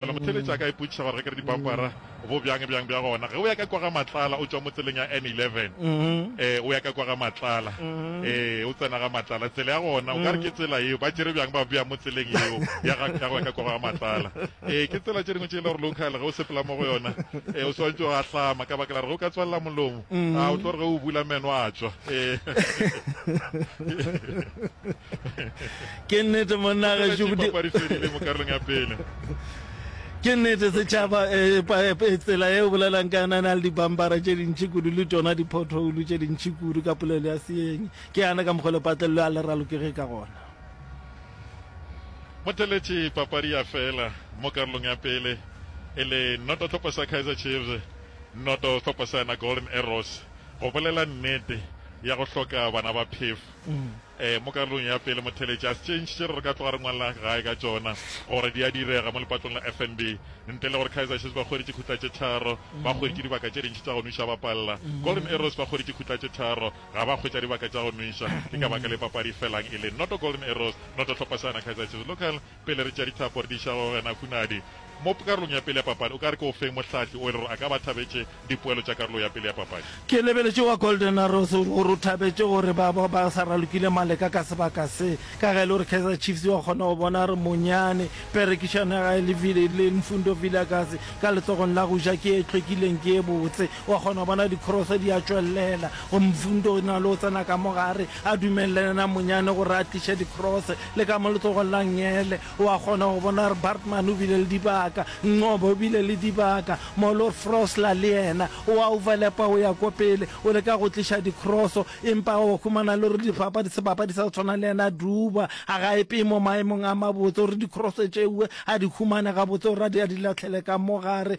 Fela motheeletši a ka ipotšiša gore ge ke re dipampara bo bjang bjang bja gona. Ge o ya ka kwa ga Matlala o tšwa mo tseleng ya N11 e o ya ka kwa ga Matlala e o tsena ga Matlala tsela ya gona o ka re ke tsela yeo ba tšere bjang ba bea mo tseleng yeo ya ga ya go ya ka kwa ga Matlala. E ke tsela tše dingwe tše e le gore local ge o sepela mo go yona e o swantšwe go ahlama ka baka la re ge o ka tswalela molomo a o tlo re ge o bula meno a tšwa e. Ke nnete monna gašo go dipapadi fedile mo karolong ya pele. Ke nnete setšhaba e, e, e, tsela e o bolelang ka yona na le dipampara tše dintšhi kudu le tšona diphothoulo tše dintšhi kudu ka polelo ya seeng ke yana ka mokgwa lepatlelelo a le ralokege ka gona motheletši papadi ya fela mo karolong ya pele e le noto tlhopho sa kaizer chiefs noto tlhopho sa yona golden arrows go bolela nnete ya go hloka bana ba phefo mm. Ee, mo karolong ya pele motheletši a tšentšhitše re re ka tloga re ngwalla gae ka tšona gore di a direga mo lepatlong la FNB. Ntle le gore Kaizer Chiefs ba hweditše khutla tše tharo, ba hweditše dibaka tše dintši tša go nwiša ba palla. Golden Arrows ba hweditše khutla tše tharo, ga ba hwetša dibaka tša go nwiša. Ke ka baka le papadi e felang e le noto Golden Arrows, noto Tlhopasana Kaizer Chiefs. Local. Pele re tšea dithapo re di iša go wena Hunadi. Mo karolong ya pele ya papadi, o ka re ke o feng mohlahli o e le gore a ka ba thabetše dipoelo tša karolo ya pele ya papadi? Ke lebeletše wa Golden Arrows o re gore o thabetše gore ba bo ba sa ralokile maleka ka sebaka se, ka ge e le gore Kaizer Chiefs wa kgona go bona a re monyane. Perekišano ya gage le Vil, le Mfundo Vilakazi ka letlogong la go ja ke e hlwekileng, ke e botse. Wa kgona go bona di-cross di a tšwelela go Mfundo na le go tsena ka mo gare, A dumelele namonyane gore a tliše dikrose, le ka mo letsogong la ngele. O a kgona go bona gore Bartman o bile le dibaka, Nqoba o bile le dibaka, Molor Frosler le yena. O a overlapa o ya ko pele, o leka go tliša dikroso, empa o humana le gore dipapadi, sebapadi sa go tshwana le yena Duba, a ga e peye mo maemong a mabotse gore dikroso tšeue a di humane gabotse gore a di a di lahlele ka mo gare.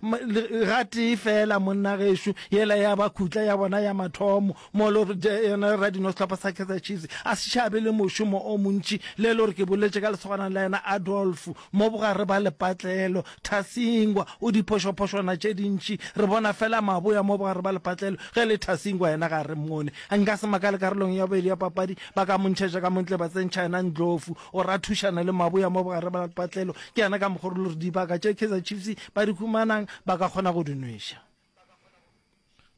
Gatee fela monna gešo yela ya ba khutla ya bona ya mathomo mo lo yena radino sehlopha sa Kaizer Chiefs a se šabe le mošomo o montši le lo re ke boletše ka lesogana la yena Adolf mo bogare ba lepatlelo Thasingwa o diphošophošwana tše dintši re bona fela maboya mo bogare ba lepatlelo ge le Thasingwa yena ga re mmone nka se makale karolong ya bobedi ya papadi ba ka montšhetša ka montle ba tsentšha yena Ndlovu Gore a thušane le maboya mo bogare bja lepatlelo, ke yena ka mokgwa o rile gore dibaka tše Kaizer Chiefs ba di humanang ba ka kgona go di nweša.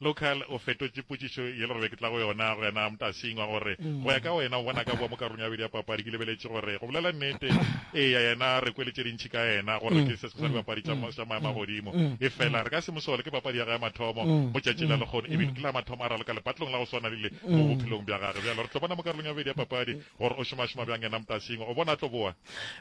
Local o fetotše potšišo ye le gore be ke tla go yona go yena Mtasingwa gore go ya ka wena o bona ka boa mo karolong ya bobedi ya papadi. Ke lebeletše gore go bolela nnete eya yena re kwele tše dintši ka yena gore ke se sengwe sa dibapadi tša maemo a godimo efela re ka se mo sole ke papadi ya gage ya mathomo mo tšatšing la lekgono ebile ke la mathomo a raloka lepatlelong la go swana lele mo bophelong bja gage. Bjalo re tlo bona mo karolong ya bobedi ya papadi Gore o šomašoma bjang yena mtasing, o bona a tlo boa?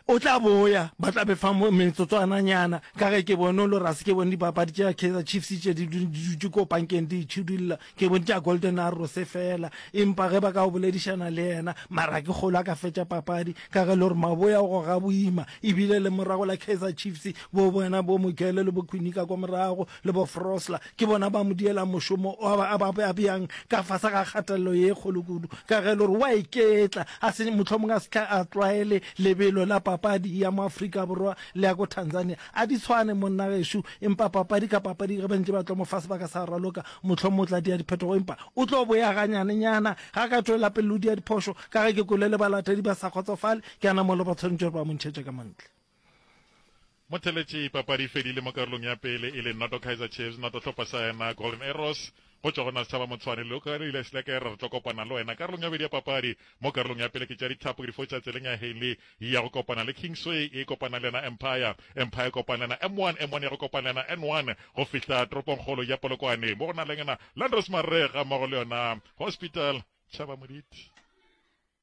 O tla boya, ba tla befa metsotswananyana, ka ge ke bone o lo rase. Ke bone dipapadi tša Kaizer Chiefs tše di dutše ko pankeng di itšhidulla, ke bone tša Golden Arrows feela. Empa ge ba ka go boledišana le yena, Marakekgolo a ka fetša papadi, ka ge le gore maboya o goga boima, ebile le morago la Kaizer Chiefs bo bona bo Mogele le bo Kwinika kwa morago, le bo Frosler ke bona ba mo dielang mošomo o a ba a bjang ka fase ga kgatelelo ye kgolo kudu, ka ge e le gore o a iketla, a se mohlomong a se tle a tlwaele lebelo la papadi ya mo Afrika Borwa le ya ko Tanzania. A di tshwane monna gešo, empa papadi ka papadi ge ba ntše ba tlo mo fa sebaka sa go raloka, mohlomong o tla dia diphetogo empa o tlo boya ganyanenyana ge a ka tšwela pele le go dia diphošo, ka ge ke kwele le balatedi ba sa kgotsofale, ke a na mola ba tshwanetše gore ba mo ntšhetše ka mo ntle. Motheletši papadi e fedile mo karolong ya pele e le noto Kaizer Chiefs noto hlopha sa yena Golden Arrows. Go tšwa go na Setšhaba Motshwane le ka ile se leke re tlo kopana le wena karolong ya bobedi ya papadi. Mo karolong ya pele ke tša dithapo ke di fotša tseleng ya Haley ya go kopana le Kingsway e kopana le yena Empire. Empire e kopana le yena M1, M1 ya go kopana le yena N1 go fihla toropongkgolo ya Polokwane mo go na le yena Landros Marega mmogo le yona Hospital. Tšhaba Moditi.